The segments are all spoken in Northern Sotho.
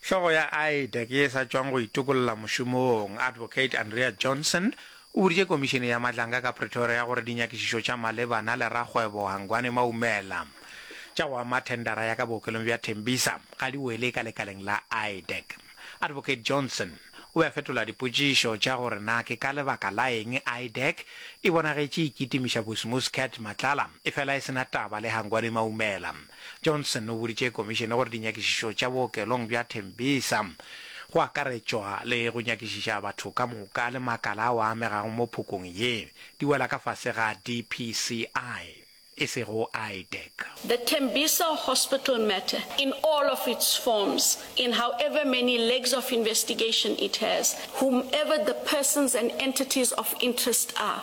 Hlogo ya IDEC ye e sa tšwang go itokolla mošomong, Advocate Andrea Johnson, o boditše Komišene ya Matlanga ka Pretoria gore dinyakišišo tša malebana le rakgwebo Hangwani Maumela tša go ama thendara ya ka bookelong bja Tembisa ga di wele ka lekaleng la IDEC. Advocate Johnson o be a fetola dipotšišo tša gore na ke ka lebaka la eng IDEC e bonagetše e kitimiša Bosmos Cat Matlala efela e se na taba le Hangwani Maumela. Johnson o boditše Komišene gore dinyakišišo tša bookelong bja Tembisa, go akaretšwa le go nyakišiša batho ka moka le makala ao a amegago mo phokong ye, di wela ka fase ga DPCI, e sego IDEC. The Tembisa Hospital matter in all of its forms, in however many legs of investigation it has, whomever the persons and entities of interest are,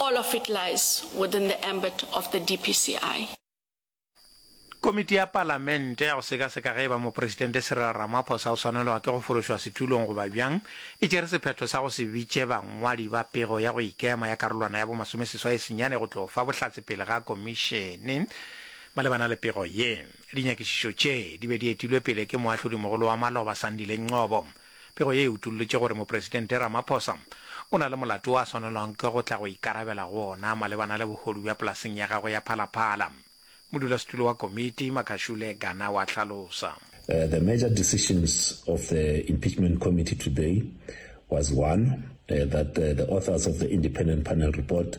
All of it lies within the ambit of the DPCI. Komiti ya Palamente ya go sekaseka ge e ba Mopresidente Cyril Ramaphosa o swanelwa ke go fološwa setulong goba bjang e tšere sephetho sa go se bitše bangwadi ba pego ya go ikema ya karolwana ya bomasomeseswai senyane go tlo fa bohlatse pele ga komišene malebana le pego ye. Dinyakišišo tše di be di etilwe pele ke Moahlodimogolo wa Maloba, Sandile Ngcobo. Pego ye e utollotše gore Mopresidente Ramaphosa o na le molato wo a swanelwang ke go tla go ikarabela go wona malebana le bohodu bja polaseng ya gagwe ya Phalaphala, modulasetulo wa komiti, Makhashule Gana wa hlalosa. The major decisions of the Impeachment Committee today was one, that the authors of the Independent Panel Report,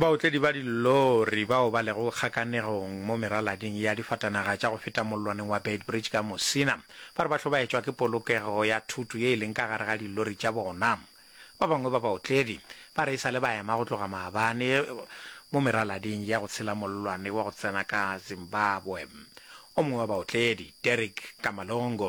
Baotledi ba dillori bao ba lego kgakanegong mo meralading ya difatanaga tša go feta mollwaneng wa Beitbridge ka Musina ba re ba hlobaetšwa ke polokego ya thutu ye e leng ka gare ga dillori tša bona. Ba bangwe ba baotledi ba re e sa le ba ema go tloga maabane mo meralading ya go tshela mollwane wa go tsena ka Zimbabwe. O mongwe wa baotledi, Derrick Kamalongo,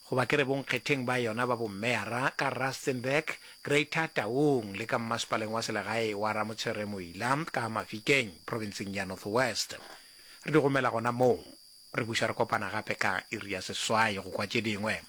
goba ke re bonkgetheng ba yona ba bommeyara ka Rustenburg, Greater Taung le ka mmasepaleng wa selegae wa Ramotshwere-Moila ka Mafikeng, provinseng ya North West. Re di gomela gona moo. Re buša re kopana gape ka iri ya seswai go kwa tše dingwe.